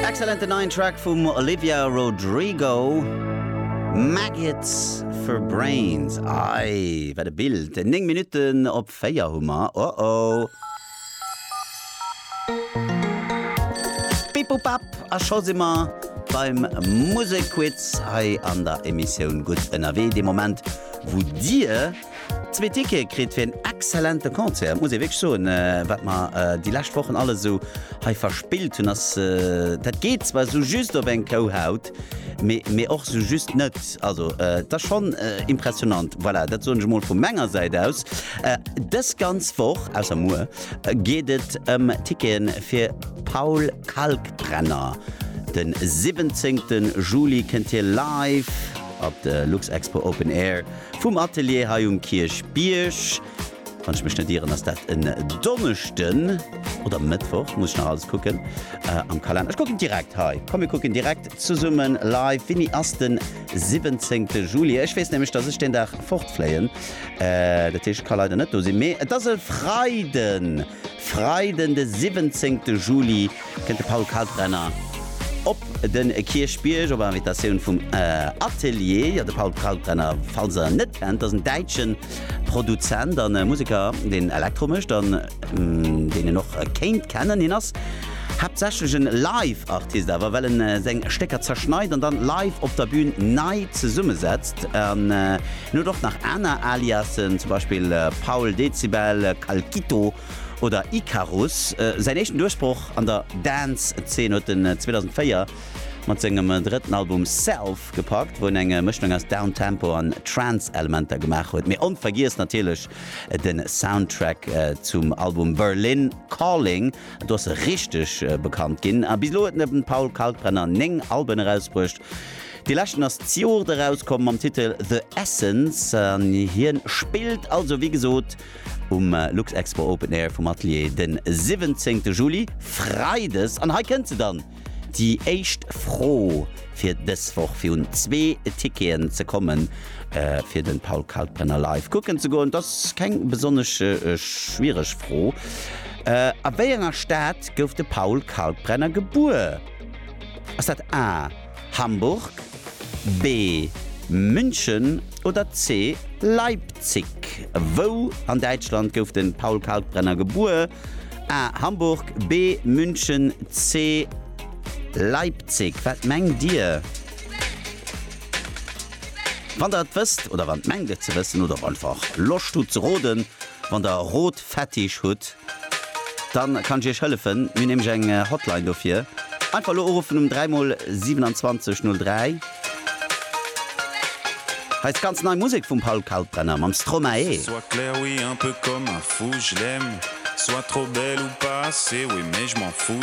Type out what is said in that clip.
Excellenten neien Track vum Olivia Rodrigo, Maggots for Brains. Ei, wat e Bild! 9 Minutten op 4 hu mer. Oh oh! Bip-bop-bap, a scho si mer beim Musekquiz hei an der Emissioun Gutt ënnerwee, dee Moment, wou Dir, Zwee Tickete kritt fir en exzellente Concert, muss ee wierklech soen. Wat mer déi lescht Wochen alles esou hei verspillt hunn, ass, dat geet zwar esou just op eng Kouhaut, mee mee och esou just net. Also et ass schonn impressionnant, voilà, dat soen ech emol vu menger Säit aus. Dës ganz Woch, ausser muer, geet et ëm Ticketen fir Paul Kalkbrenner. De 17 Juli kënnt hie live op de Luxexpo Open Air. Vum Atelier hei um Kierchbierg. Wann ech mech net ieren, ass dat en Donneschden oder Mëttwoch, muss ech nach alles kucken am Kalenner. Ech kucken direkt hei, komm mir kucken direkt zesummen live wéini ass den 17 Juli. Ech weess nämlech, dass ech deen Dag fortfléien, dat heescht ech ka leider net do sinn, mee et ass e Freiden, Freiden de 17 Juli. kënnt de Paul Kalkbrenner op de Kierchbierg op Invitatioun vum Atelier. Jo, de Paul Kalkbrenner, falls der en net kennt, ass en däitsche Produzent a Museker, deen Elektro mécht an deen een och kéint kennen. Hien ass haaptsächlech e Live-Artist awer, well e seng Stécker zerschneit an dann live op der Bün nei zesummesetzt. An hien huet och nach aner Aliasen, zum Beispill Paul Dezibel, Calkito, oder Icarus. Säin éischten Duerchbroch an der Dance-Zeen huet en 2004 mat sengem drëtten Album Self gepackt, wou en eng Mëschung aus Downtempo an Trance-Elementer gemaach huet. Mee onvergiess natierlech de Soundtrack zum Album Berlin Calling, do ass e richteg bekannt ginn. A bis elo huet de Paul Kalkbrenner 9 Alben erausbruecht, dee leschten ass d'Joert erauskomm mam Titel The Essence. Hien spillt also wéi gesot um Luxexpo Open Air vum Atelier den 17 Juli, Freides, an hei kënnt se dann, déi éischt Fro fir dës Woch fir un zwee Ticketen ze kommen fir den Paul Kalkbrenner live kucken ze goen. Et ass keng besonnesch schwiereg Fro, a wéi enger Stad gouf de Paul Kalkbrenner gebuer? Ass dat A. Hamburg, B. München oder C. Leipzig? Wou an Däitschland gouf de Paul Kalkbrenner gebuer? A. Hamburg, B. München, C. Leipzig? Wat mengt Dir? Wann Der et wësst oder wann mengt et ze wëssen oder och einfach Loscht hutt ze roden, wann Der rot, Fetisch hutt, dann kann ech iech hëllefen. Mir hunn nämlech eng Hotline dofir. Einfach elo uruffen um 3 mol 27 03. Hei ass ganz nei Musek vum Paul Kalkbrenner mam Stromae. Qu'elle soit claire oui un peu comme un fou je l'aime soit trop belle ou pas assez oui mais je m'en fous.